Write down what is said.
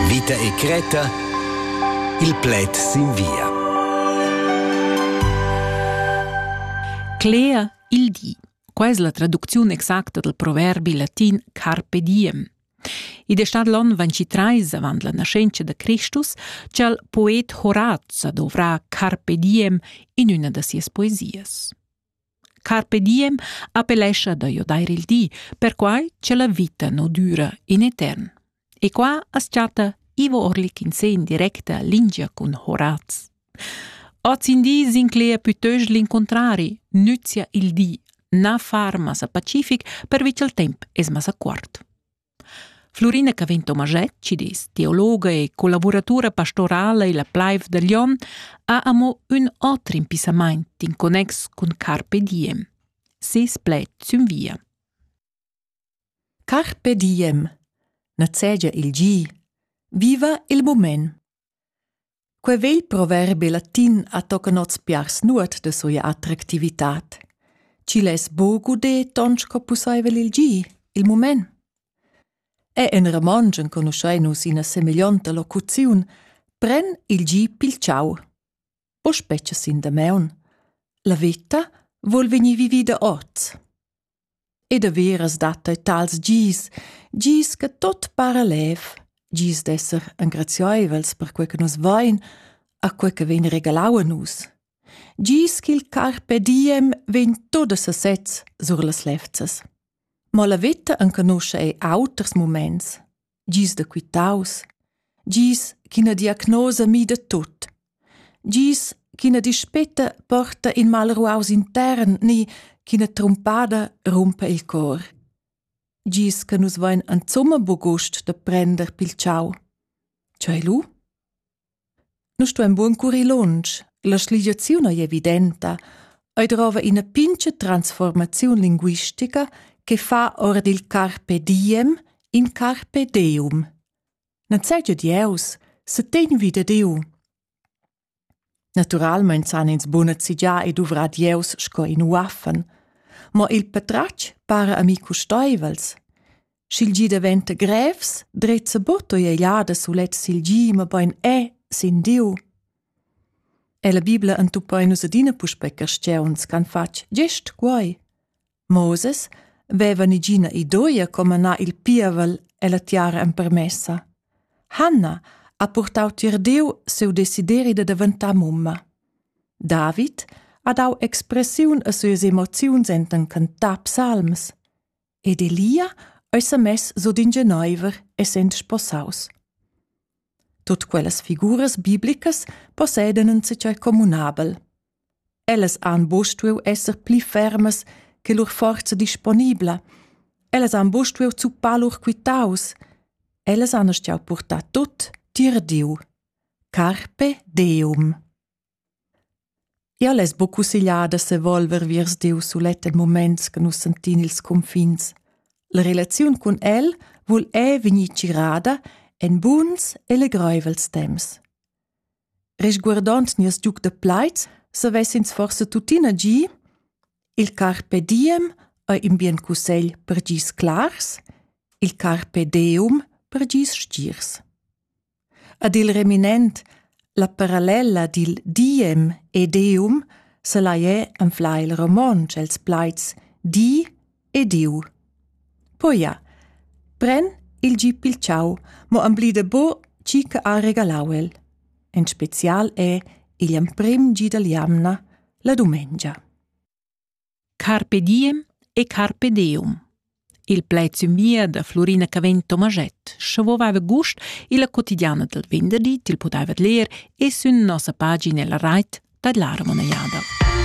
Vita e cretta il pled sin via. Cler il di. Qua es la traducziun exacta dal proverbi latin carpe diem. Id è stat l'on 23 avant la nascenza da Christus ch'al poet Horaz dovrà carpe diem in una da sias poesias. Carpe diem appellescha da giodair il di, perquai cha la vita nu düra in etern. E qua as chatta Ivo Orlik in se in directa lingia cun Horaz. Oz in di s'inclegia pütöst l'incuntrari, nüzia il di, na far massa pacific pervi cha'l temp es massa cuort. Flurina Cavin Tomaschetg, dis, teologa e collavuratura pastorala illa plaiv da Glion, ha amo ün oter impissamaint in connex cun Carpe Diem. Ses pled sün via. Carpe Diem. Nazegia il gi. Viva il mument. Quei vegl proverbi latin ha tocan oz piars nuot da sia attractivitad. Ch'igl es buca ude ton sco pusseivel il gi, il mument. E en romontsch enconuschein nus ina semeglionta locuziun pren il gi pil tgau. O spetga sin damaun. La veta vol vegnir vivida oz. E daveras dat ei tals gis, gis che tot para lev, gis d'esser engrazieivels per quei che nus vein, a quei che vegn regalau a nus. Gis ch'il carpe diem vegn tot a sesez sur las levzas. Mo la veta enconuscha ei auters muments. gis da quitaus, gis ch'ina diagnosa mida tut, gis ch'ina dispeta porta in malruaus intern ni ch'ina trumpada rumpa il cor, gis che nus vein insumma buc gust da prender pil tschau. Tschei lu? Nu stuain buca currir lunsch, la schligiaziun ei evidenta, ei drova ina pincha transformaziun linguistica che fa ora dil carpe diem in carpe deum. Non sai giu Dieus, se tegn vida Diu. Naturalmein san ins buna zigià e duvrar Dieus sco in uaffen, ma il patratg para a mi custeivels. Sch'il gi daventa grevs, drezza butto ei ellada sulet sil gi, mabain è sin Diu. E la Bibla entuppa in nus adina puspe cristiauns ch'han fatg gest quai. Moses veva nigina idoia come anar il pievel e la tiara empermessa. Hanna ha purtau tier Diu seu desideri da daventar mumma. David ha dau expressiun a suas emoziuns enten cantar psalms. ed Elia ei semess sut in geneiver, essend sposaus. Tut quellas figuras biblicas possedan in tschei communabel. Ellas han buc stuiu esser pli fermas che lur forza disponibla. Ellas han buc stuiu zuppar lur quitaus. Ellas han stuiu purtar tut tier Diu. Carpe Deum. Jau less buc cussegliar da sevolver viers Diu sulet en muments che nus sentin ils cunfins. La relaziun cun el vul è vegnir tgirada en buns e legreivels temps. Resguardond nies giug da plaid, savessins forse tuttina gi il carpe diem ei in bien cussegl per gis clars, il carpe deum per gis stirs. Ad il reminent la parallella dil diem e deum selaier anflar il romontsch els plaids di e diu. Poi ja, pren il gi pil ciau, mo amblida bo chi che ha regalau el. En special è igl emprim gi dall jamna, la dumengia. Carpe diem e carpe deum. Il plaid sümvia da Florina Cavegn Tomaschett, scha vovava gust illa quotidiana dal venderdi til pudaivat ler e sün nossa pagina la rait da Lara Monejada.